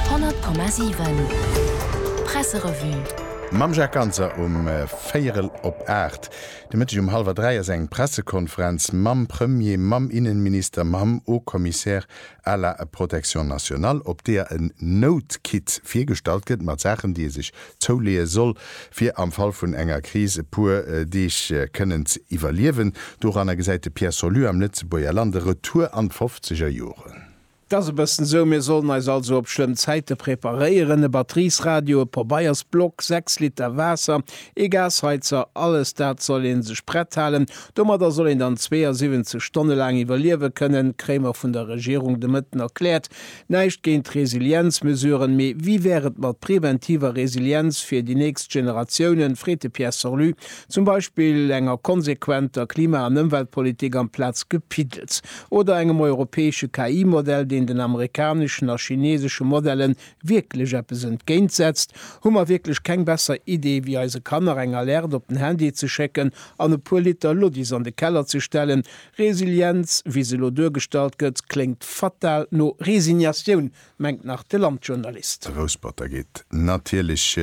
100,7 Presserevue. Mam Jacques Ganser um véierel op aacht de Mëtteg. Um hallwer dräi ass eng Pressekonferenz mam Premier, mam Innenminister, mam Haut-Commissaire à la Protection nationale, op deeër en Nout-Kit virgestallt gëtt mat Saachen, déi ee sech zouleeë soll, fir am Fall vun enger Kris e puer Deeg kënnen ze iwwerliewen. Doranner gesäit de Pierre Solus am Lëtzebuerger Land e Retour an d'Fofzegerjoren. 't ass e bëssen esou, mir sollen eis also op schlëmm Zäite preparéieren, e Batteriesradio, e Pobeiersblock, 6 Liter Waasser, ee Gasheizer, alles dat soll ee sech prett halen, domadder soll een dann 72 Stonne laang iwwerliewe kënnen, kréie mer vun der Regierung de Mëtten erkläert. Näischt géint Resilienzmesuren, mee wéi wär et mat preventiver Resilienz fir déi nächst Generatiounen, freet de Pierre Sorlu, zum Beispill enger konsequenter Klima an Ëmweltpolitik amplaz Gepiddels. oder engem europäesche KI-Modell, deen den amerikaneschen a chinesesche Modellen wierklech eppes entgéint setzt, hu mer wierklech keng besser Idee wéi eise Kanner eng Alerte op den Handy ze schécken an e puer Liter Luddis an de Keller ze stellen. Resilienz, wéi se elo duergestallt gëtt, kléngt fatal no Resignatioun, mengt nach de Landjournalist. Rousperter geet natierlech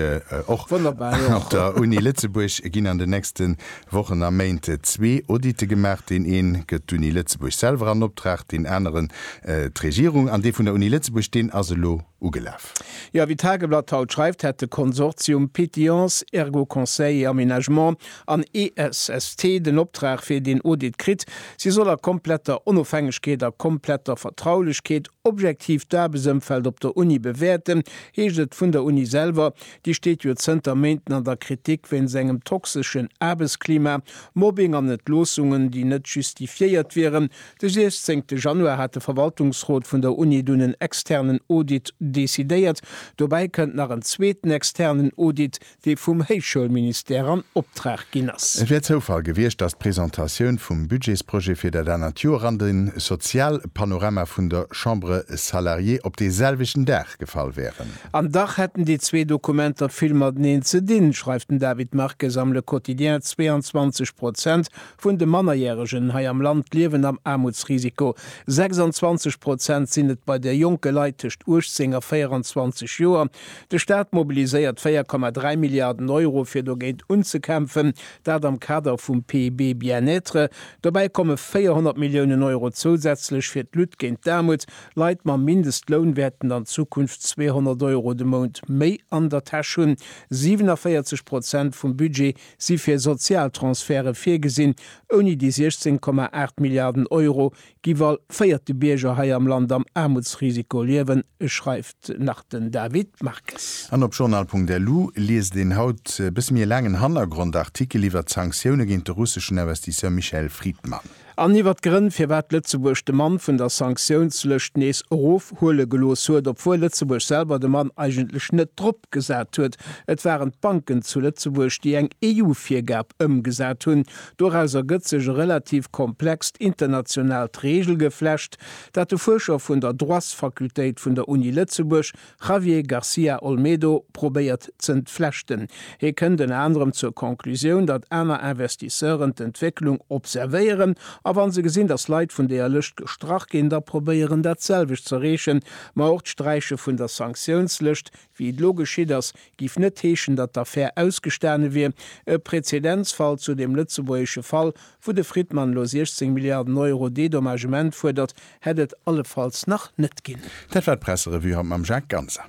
och. Wonnerbar, jo. Op der Uni Lëtzebuerg ginn an den nächste Wochen a Méint zwee Auditë gemaach. Deen ee gëtt d'Uni Lëtzebuerg selwer an Optrag, deen aneren d'Regierung. An dee vun der Uni Lëtzebuerg, deen ass elo ugelaf. Jo, wéi d'Tageblatt haut schreift, hätt de Konsortium Pétillants, Ergo Conseil et Aménagement an ESST den Optrag fir deen Audit kritt. Si soll a kompletter Onofhängegkeet a kompletter Vertraulechkeet Objektiv d'Aarbechtsëmfeld op der Uni bewäerten, heescht et vun der Uni selwer. Déi steet jo zënter Méinten an der Kritik wéinst engem toxeschen Aarbechtsklima, Mobbing an Entloossungen, déi net justifiéiert wieren. De 16 Januar hat de Verwaltungsrot vun der Uni dunn en externen Audit decidéiert. Dobäi kënnt nach en zweeten externen Audit, dee vum Héichschoulministère an Optrag ginn ass. Et wär Zoufall gewiescht, datt d'Presentatioun vum Budgetsprojet fir dat anert Joer an den Sozialpanorama vun der Chambre salariée op dee selwechten Dag gefall wären. An dach hätten déi zwee Dokumenter vill mateneen ze dinn, schreift den David Marques am Le Quotidien. 22 Prozent vun de Mannerjäregen hei am Land liewen am Aarmutsrisiko. 26 Prozent sinn et bei de jonke Leit tëscht 18 a 24 Joer. De Staat mobiliséiert 4,3 Milliarden Euro fir dogéint unzekämpfen, dat am Kader vum PB Bien-être. Dobäi komme 400 Milliounen Euro zousätzlech fir d'Lutte géint d'Aarmut. Leit mam Mindestloun wäerten an Zukunft 200 Euro de Mount méi an der Täsch hunn. 47 Prozent vum Budget si fir Sozialtransferte virgesinn, ouni déi 16,8 Milliarden Euro, Giff all véierte Bierger hei am Land am Aarmutsrisiko liewen, schreift nach den David Marques. An op journal.lu liest een haut e bësse méi e laangen Hannergrond-Artikel iwwert d'Sanktioune géint de russeschen Investisseur Michael Fridman. An iwwert d'Grënn, firwat Lëtzebuerg de Mann vun der Sanktiounslëscht nees erofhuele gelooss huet, obwuel Lëtzebuerg selwer de Mann eigentlech net drop gesat huet. Et waren d'Banken zu Lëtzebuerg, déi eng EU-Virgab ëmgesat hunn, Doraus ergëtt sech e relativ komplext internationaalt Reegelgeflecht, dat de Fuerscher vun der Droitsfakultéit vun der Uni Lëtzebuerg, Javier Garcia Olmedo, probéiert z'entflechten. Hie kënnt ënner anerem zur Conclusioun, datt aner Investisseuren d'Entwécklung observéieren a wa se gesinn, datt Leit vun deeër Lëscht gestrach ginn, da probéieren, dat selwecht z'erreechen. Ma och d'Sträiche vun der Sanktiounslëscht Wéi et elo geschitt ass, giff net heeschen, datt d'Affär ausgestane wier. E Präzedenzfall zu dem lëtzebuergesche Fall, wou de Fridman elo 16 Milliarden Euro Dedommagement fuerdert, hätt et allefalls nach net ginn. Dat war d'Presserevue haut mam Jacques Ganser.